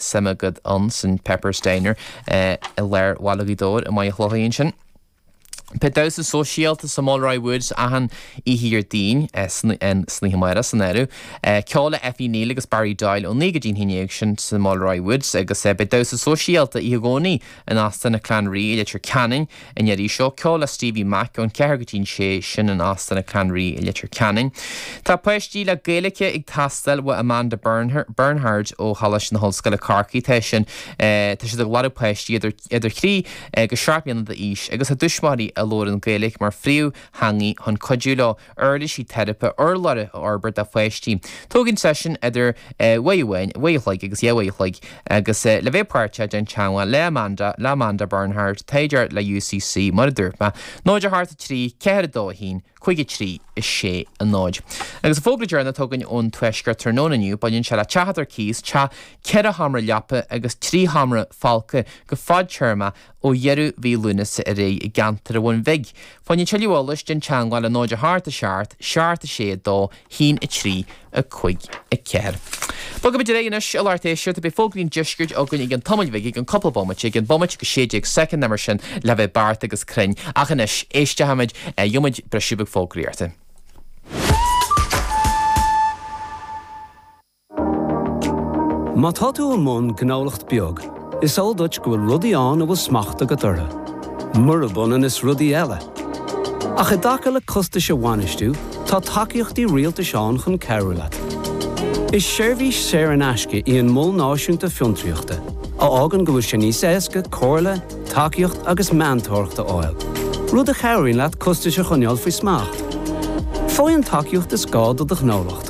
Suim agat ann san Pepper's Diner i lár Bhaile Ghaoth Dobhair i Machaire Chlochair ansin. Beidh damhsa sóisialta sa Mulroy Woods achan oíche Dhéardaoin san oíche amárach san áireamh. Ceol le Effie Neill agus Barry Doyle ó naoi go dtí an haon déag sin sa Mulroy Woods agus beidh damhsa sóisialta oíche Dhomhnaigh In Óstán an Clanree i Leitir Ceanainn, an iarraidh seo, ceol le Stevie Mac ón cheathair go dtí an sé sin in Óstán an Clanree i Leitir Ceanainn. Tá páistí le Gaeilic ag teastáil ó Amanda Bernhard ó Choláiste na hOllscoile, Corcaigh. Tá sin, tá siad ag lorg páistí idir idir thrí go seacht mbliana d'aois agus a dtuismitheoirí a labhrann Gaeilic mar phríomhtheangaidh chun cuidiú leo. uirlisí teiripe urlabhra a fhorbairt do pháistí. Tógann seisiún idir uair amháin, uair an chloig agus dhá uair an chloig agus le bheith páirteach déan teangmháil le Amanda, le Amanda Bernhard, taighdeoir le UCC, mar a dúirt mé. 0 8 3 4 2 1 5 3 6 0. Agus an fógra deireanach atá againn ón Tuaisceart tráthnóna inniu, baineann sé le teach atá ar cíos, teach ceithre sheomra leapa agus trí sheomra folctha go fadtéarmach, Ó dheireadh mhí Lúnasa ar aghaidh i gceantar an Bhun Bhig, fá choinne tuilleadh eolais déan teangmháil le 0 8 7, 7 6, 2, 1 3, 5, 4. Bogaimid ar aghaidh anois i lár Théis-Seart beidh fógraí an Deiscirt againn i gceann tamaill bhig i gceann cupla bomaite i gceann bomaite go 16 soicind nó mar sin le bheith beacht agus cruinn. Ach anois, éisteochaimid, gheobhaimid briseadh beag fógraíochta. Má tá tú i mbun gnólacht beag, is eol duit go bhfuil rudaí ann a bhfuil smacht agat orthu, murab ionann is rudaí eile. Ach i dtaca le costais a bhainistiú, tá tacaíochtaí rialtais ann chun cabhrú leat. Is seirbhís saor in aisce í an Mol Náisiúnta Fiontraíochta, a fhágann go bhfuil sé níos éasca comhairle, tacaíocht agus meantóireacht a fháil, rud a chabhraíonn leat costais a choinneáil faoi smacht. Faigh an tacaíocht is gá do do ghnólacht.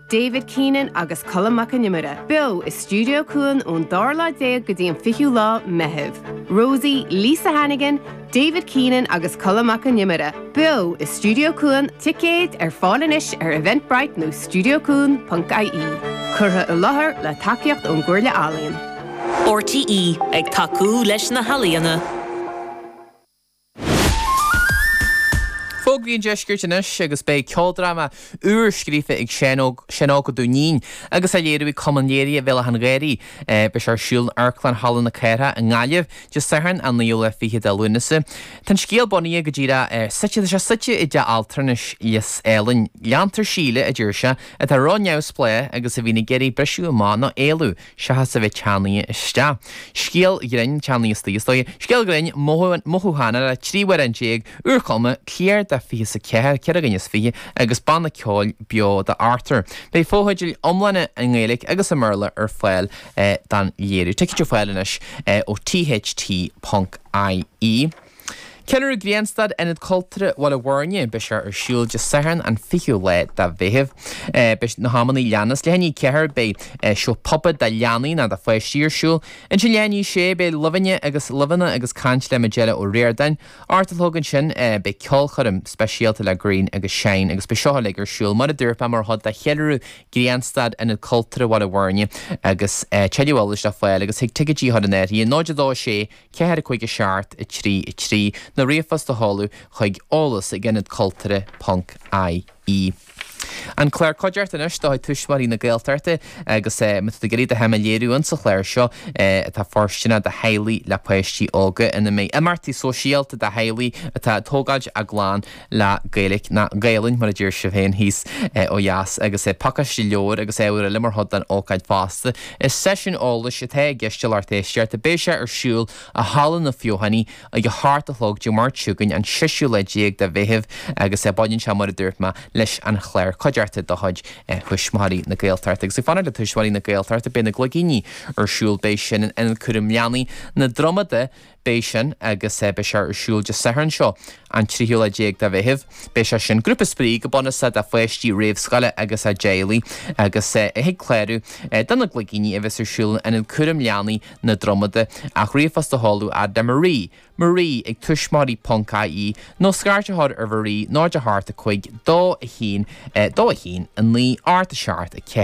David Keenan agus Colm Mac an Iomaire beo i Stiúideo Cuan ón dara lá déag go dtí an fichiú lá Meitheamh. Rosie, Lisa Hannigan, David Keenan agus Colm Mac an Iomaire beo i Stiúideo Cuan, ticéid ar fáil anois ar Eventbrite nó stiuideocuan.ie. Curtha i láthair le tacaíocht ón gComhairle Ealaíon. RTÉ, ag tacú leis na healaíona. Fógraí an Deiscirt anois agus beidh ceoldráma úr scríofa ag Seán Óg Ó Duinnín agus á léiriú ag Cumann Léirithe Bhéal Átha'n Ghaorthaidh. Beidh sé ar siúl in Amharclann Halla na Cathrach i nGaillimh, Dé Sathairn an 29ú de Lúnasa. Tá an scéal bunaithe go díreach ar suite, tá sé suite i dteach altranais Lios Eilain. Leantar Síle, a deir sé, atá ró-neamhspleách agus a bhíonn ag iarraidh briseadh amach nó éalú. Seachas a bheith ceannaithe isteach. Scéal grinn, ceannaithe istigh sa seó. Scéal grinn, mothúchánach, trí amhrán déag úrchumtha, cliar de fiche sa ceathair, ceithre dhuine is fiche, agus banna ceoil beo do Arthur. Beidh fotheidil iomlána i nGaeilge agus i mBéarla ar fáil don léiriú. Ticéid ar fáil anois ó tht.ie. Ceiliúradh Grianstad, Ionad Cultúrtha Bhaile Bhuirne. Beidh sé ar siúl Dé Sathairn an 20ú lá de Mheitheamh. Beidh na himeachtaí a leanas. Le haghaidh a 4 beidh seó puppet do leanaí ná do pháistí ar siúl. Ansin le haghaidh a 6 beidh luibheanna agus luibheanna agus caint le Majella O Riordáin. Ocht a chlog ansin beidh ceolchoirm speisialta le Greenshine agus beidh seo uilig ar siúl mar a dúirt mé mar chuid de cheiliúradh Grianstad, Ionad Cultúrtha Bhaile Bhuirne agus tuilleadh eolais le fáil agus chuig ticketdetailsnethe 026 4 5 7 3 3 nó ríomhphost a sheoladh chuig eolas ag ionad cultúrtha ponc ie An Clár Cuideachta anois de chuid Thuismitheoirí na Gaeltachta Agus é Má tá tú ag iarraidh do shuim a léiriú ins an chlár seo atá foirsteanach do theaghlaigh le páistí óga ina mbeidh imeachtaí sóisialta do theaghlaigh atá ag tógáilt a gclann le Gaeilic nó Gaelainn mar a deir sibh féin thíos ó dheas agus pacáiste leabhar agus ábhair eile mar chuid den ócáid fosta. Is seisiún eolais atá i gceist a lucht éisteachta beidh sé ar siúl i Halla na Feothanaí ag a hocht a chlog Dé Máirt chugainn an seisiú lá déag de Mheitheamh agus baineann sé mar a dúirt mé leis an chlár Cuideachta de chuid Thuismitheoirí na Gaeltachta agus ag fanacht le Tuismitheoirí na Gaeltachta beidh na Gligíní ar siúl beidh sin in Ionad Cúraim Leanaí na Dromoda Beidh sin agus beidh sé ar siúl Dé Sathairn seo, an tríú lá déag de Mheitheamh. Beidh sé sin, grúpa spraoi go bunúsach do pháistí réamhscoile agus a dteaghlaigh agus thig clárú do na Gligíní a bheas ar siúl in Ionad Cúraim Leanaí na Dromoda ach ríomhphost a sheoladh a fhad le Marie, Marie ag tuismitheoirí ponc ie nó scairt a chur ar Mharie 0 8 5 2 1 2 1 9 8 7 4.